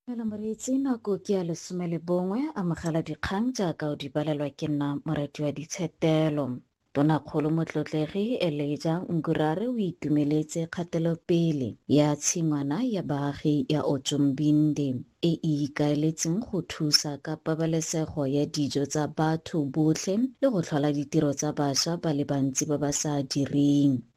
Dumela moreetsi, nako ke ya lesome le bongwe. Amogela dikgang jaaka o di balelwa ke nna Moratiwaditshetelo. Tonakgolo Motlotlegi Elijah Ngurare o itumeletse kgatelopele ya tshingwana ya baagi ya Otjombinde e e ikaeletseng go thusa ka pabalesego ya dijo tsa batho botlhe le go tlhola ditiro tsa bašwa ba le bantsi ba ba sa direng.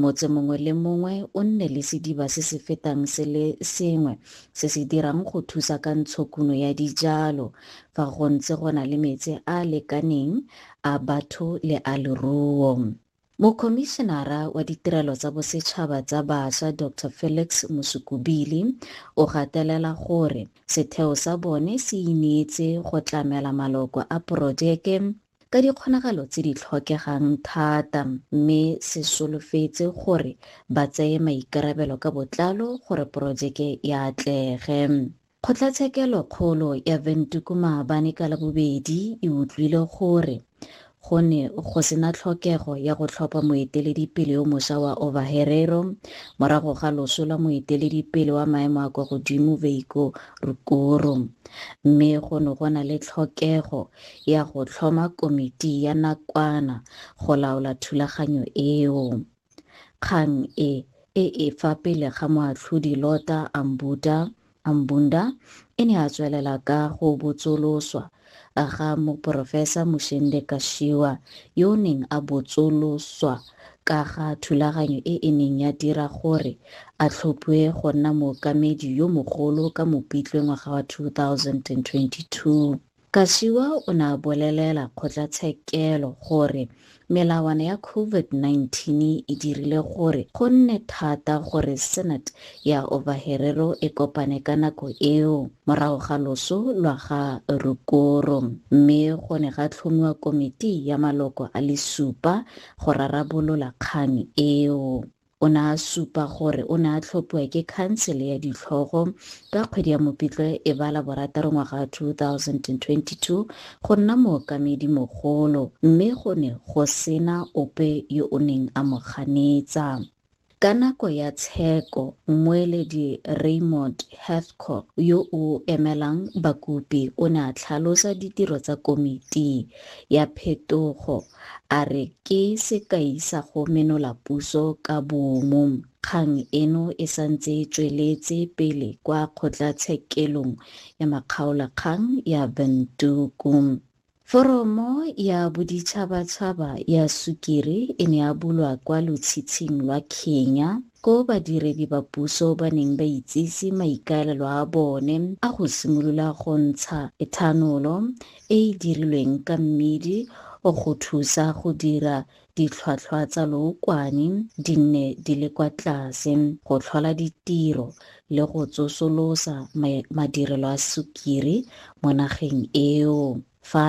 Motse mongwe le mongwe o nne le sediba se se fetang se le sengwe se se dirang go thusa ka ntshokuno ya dijalo fa go ntse go na le metsi a a lekaneng a batho le a leruo. Mokhomišenara wa Ditirelo tsa Bosetšhaba tsa Basha Doctor Felix Musukubili o gatelela gore setheo sa bone se ineetse go tlamela maloko a porojeke ka dikgonagalo tse di tlhokegang thata mme se solofetse gore ba tseye maikarabelo ka botlalo gore porojeke e atlege. Kgotlatshekelo kgolo ya Windhoek maabane ka Labobedi e utlwile gore go ne go sena tlhokego ya go tlhopha moeteledipele yo mosha wa Ovaherero morago ga loso la moeteledipele wa maemo a kwa godimo Veiko Rukuru mme go ne go na le tlhokego ya go tlhoma komiti ya nakwana go laola thulaganyo eo. Kgang e e e fa pele ga Moatlhodi Lota Ambuta Ambunda e ne a tswelela ka go botsoloswa ga Moporofesa Mushende Kashiwa yo o neng a botsoloswa ka ga thulaganyo e e neng ya dira gore a tlhophiwe go nna mookamedi yo mogolo ka Mopitlwe ngwaga wa 2022. Kashiwa o ne a bolelela kgotlatshekelo gore melawana ya COVID-19 e dirile gore go nne thata gore Senate ya Ovaherero e kopane ka nako eo morago ga loso lwa ga Rukoro mme go ne ga tlhomiwa komiti ya maloko a le supa go rarabolola kgang eo. O ne a supa gore o ne a tlhophiwa ke khansele ya ditlhogo ka kgwedi ya Mopitlwe e ba la borataro ngwaga wa 2022 go nna mookamedi mogolo mme go ne go sena ope yo o neng a mo ganetsa. Ka nako ya tsheko, mmueledi Raymond Hathcock yo o emelang bakopi o ne a tlhalosa ditiro tsa komiti ya phetogo a re ke sekai sa go menola puso ka boomo. Kgang eno e santse e tsweletse pele kwa kgotlatshekelong ya makgaolakgang ya Windhoek. Foromo ya boditšhabatšhaba ya sukiri e ne ya bulwa kwa lotshitshing lwa Kenya. koo badiredi ba puso ba neng ba itsise maikaelelo a bone a go simolola go ntsha ethanolo e e dirilweng ka mmidi go thusa go dira ditlhwatlhwa tsa lookwane di nne di le kwa tlase, go tlhola ditiro le go tsosolosa madirelo a sukiri mo nageng eo. Fa